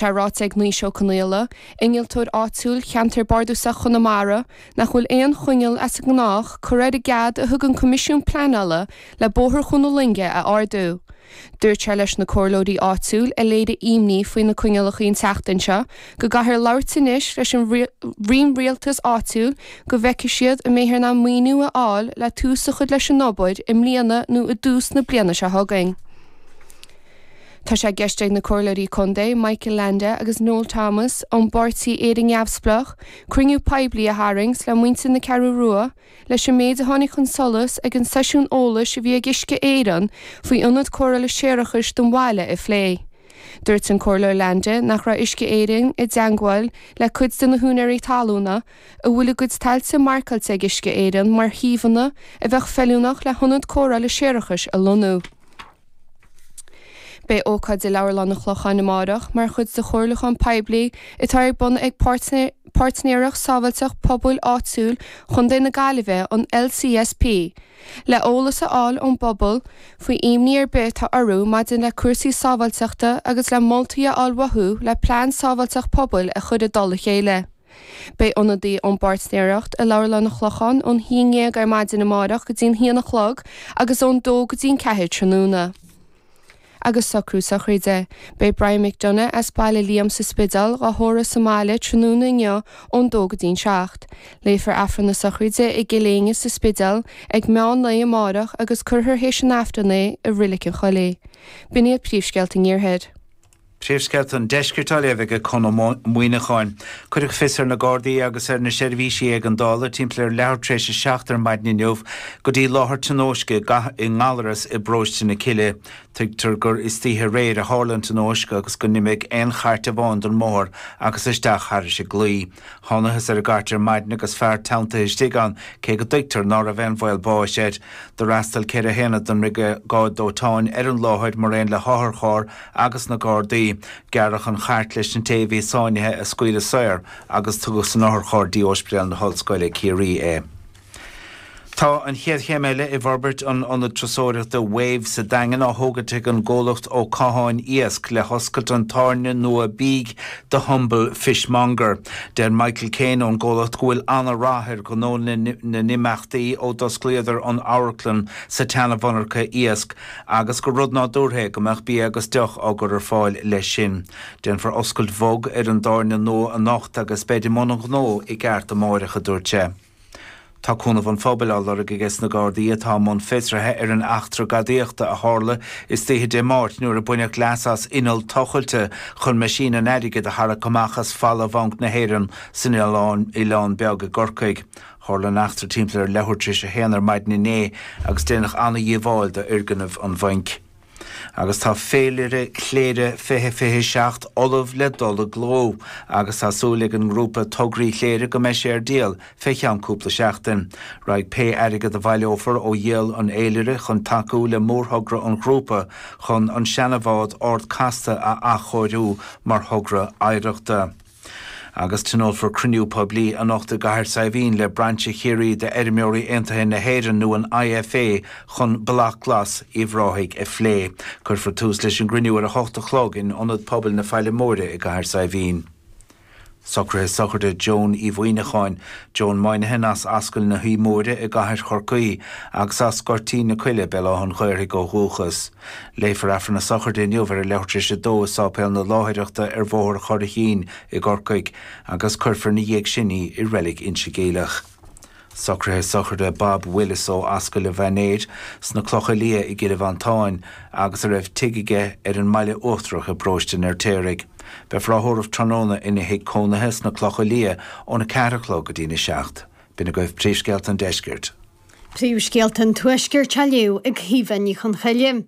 Tá ráite ag Naoise Ó Conaola, innealtóir áitiúil Cheantar Bardasach Chonamara, nach bhfuil aon choinneal as an ngnách cur ar an gcead a thug an Coimisiún Pleanála le Bóthar Chuan na Loinge a ardú. Dúirt sé leis na comhairleoirí áitiúil a léirigh ímní faoi na coinnealachaí an tseachtain seo go gcaithfear labhairt anois leis an Roinn Rialtas Áitiúil go bhfeicfidh siad an mbeifear in ann maoiniú a fháil le tús a chur leis an obair i mbliana nó i dtús na bliana seo chugainn. Tá sé i gceist ag na Comhairleoirí Contae, Michael Leainde agus Noel Thomas ón bpáirtí Éire Neamhspleach, cruinniú poiblí a tharraingt le muintir na Ceathrú Rua leis an méid a tháinig chun solais ag an seisiún eolais a bhí ag Uisce Éireann faoi Ionad Cóireála Séarachais don bhaile a phlé. Dúirt an Comhairleoir Leainde nach raibh Uisce Éireann i dteangmháil le cuid de na húinéirí talúna a bhfuil a gcuid tailte marcáilte ag Uisce Éireann mar shuíomhanna a bheadh feiliúnach le hIonad Cóireála Séarachais a lonnú. Beidh ócáid i Leabharlann an Chlocháin amárach mar chuid de chomhairliúchán poiblí atá ar bun ag Páirtnéireacht Sábháilteacht Pobail Áitiúil Chontae na Gaillimhe, an LCSP, le eolas a fháil ón bpobal faoi ímní ar bith atá orthu maidir le cúrsaí sábháilteachta agus le moltaí a fháil uathu le plean sábháilteacht pobail a chur i dtoll a chéile. Beidh ionadaí ón bpáirtnéireacht i Leabharlann an Chlocháin ón haon ndéag ar maidin amárach go dtí'n haon a chlog agus ón dó go dtí'n ceathair tráthnóna. Agus socrú sochraide. Beidh Brian McDonagh as Baile Liam sa Spideál dhá thórramh sa mbaile tráthnóna inniu ón dó go dtí'n seacht. Léifear Aifreann na sochraide i gCill Éinne sa Spideal ag meán lae amárach agus curfear théis an Aifrinn é i Roilic an Choillín. B'in iad príomhscéalta an iarthair. Príomhscéalta an Deiscirt á léamh aige Conn Ó Muíneacháin. Cuireadh fios ar na Gardaí agus ar na seirbhísí éigeandála timpeall ar leathuair tar éis a seacht ar maidin inniu go dtí láthair tionóisce i nGallaras i bparóiste na Cille. Tuigtear gur istoíche aréir a tharla an tionóisc agus gur imigh aon chairt amháin den mbóthar agus isteach thar chlaí. Thánathas ar an gcairt ar maidin agus fear teanntaithe istigh ann, cé go dtuigtear ná raibh aon bhaol báis air. Do fhreastail ceithre haonad den mBriogáid Dóiteáin ar an láthair maraon le hotharcharr agus na Gardaí. Gearradh an chairt leis an té a bhí sáinnithe a scaoileadh saor agus tugadh san otharcharr dtí Óispidéal na hOllscoile, Ciarraí é. Tá an chéad chéim eile i bhforbairt an Ionad Turasóireachta Wave sa Daingean á tógaint ag an gcomhlacht Ó Catháin Iasc le hoscailt an tábhairne nua bídh The Humble Fishmonger. Deir Michael Keane ón gcomhlacht go bhfuil an-rath ar ghnó na n-imeachtaí ó d'osclaíodar an amharclann sa tseana-mhonarcha iasc agus gur rud nádúrtha é go mbeadh bia agus deoch á gcur ar fáil leis sin. Déanfar oscailt bhog ar an dtábhairne nua anocht agus beid i mbun an ghnó i gceart amáireach, a dúirt sé. Tá cúnamh an phobail á lorg agesna Gardaí atá i mbun fiosraithe ar an eachtra gadaíochta a tharla istoíche Dé Máirt nuair a baineadh leas as inneall tochailte chun meaisín an airgid a tharrac amach as falla Bhanc na hÉireann san Oileán Beag i gCorcaigh. Tharla an eachtra timpeall ar leathuair tar éis a haon ar maidin inné agus déanadh an-dhíobháil d'fhoirgneamh an bhainc. Agus tá féilire Chléire 2027 ullamh le dul i gcló agus tá súil ag an ngrúpa Tograí Chléire go mbeidh sé ar díol fé cheann cúpla seachtain. Raghaidh pé airgead a bhaileofar ó dhíol an fhéilire chun tacú le mórthogra an ghrúpa chun an seana bhád Ard Casta a athchóiriú mar thogra oidhreachta. Agus tionólfar cruinniú poiblí anocht i gCathair Saidhbhín le Brainse Chiarraí de Fheirmeoirí Aontaithe na hÉireann nó an IFA chun Bloc Glas Uíbh Ráthaigh a phlé. Cuirfear tús leis an gcruinniú ar a hocht a chlog in Ionad Pobail na Faille Móire i gCathair Saidhbhín. Socraithe sochraide Joan Uí Mhuíneacháin, Joan Moynihan as Ascaill na hAbha Móire i gCathair Chorcaí agus as Goirtín na Coille, Béal Átha'n Ghaorthaidh ó dhúchas. Léifear Aifreann na Sochraide inniu ar a leathuairtréis a dó i Sáipéal na Láithreachta ar Bhóthar Churraichín i gCorcaigh agus cuirfear ina dhiaidh sin í i Reilig Inse Geimhleach. Socraithe sochraide Bob Willis ó Ascaill an Mhainéir sna Clocha Liatha i gCill Mhantáin agus a raibh tigh aige ar an mBaile Uachtarach i bparóiste an Fheirtéaraigh. Beifear á thórramh tráthnóna ina thigh cónaithe sna Clocha Liatha óna ceathair a chlog go dtína seacht. B'in agaibh príomhscéalta an deiscirt. Príomhscéalta an Tuaiscirt á léamh ag Caoimhe Ní Chonchoille.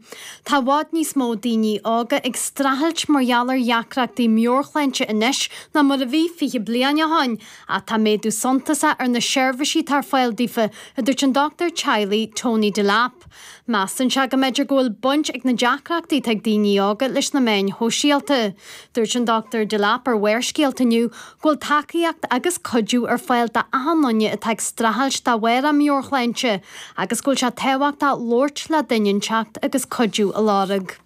Tá i bhfad níos mó daoine óga ag streachailt mar gheall ar dheacrachtaí meabhairshláinte anois ná mar a bhí fiche bliain ó shin ach tá méadú suntasach ar na seirbhísí atá ar fáil daofa, a dúirt an dochtúir teaghlaigh Tony Delap. Measann sé go mb'fhéidir go bhfuil baint ag na deacrachtaí atá ag daoine óga leis na meáin shóisialta. Dúirt an Dr Delap ar Bharrscéalta inniu, go bhfuil tacaíocht agus cuidiú ar fáil d'achan duine atá ag streachailt de bharr a meabhairshláinte agus go bhfuil sé tábhachtach labhairt le duine inteacht agus cuidiú a lorg.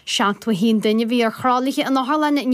71 duine a bhí ar thralaithe in otharlanna an.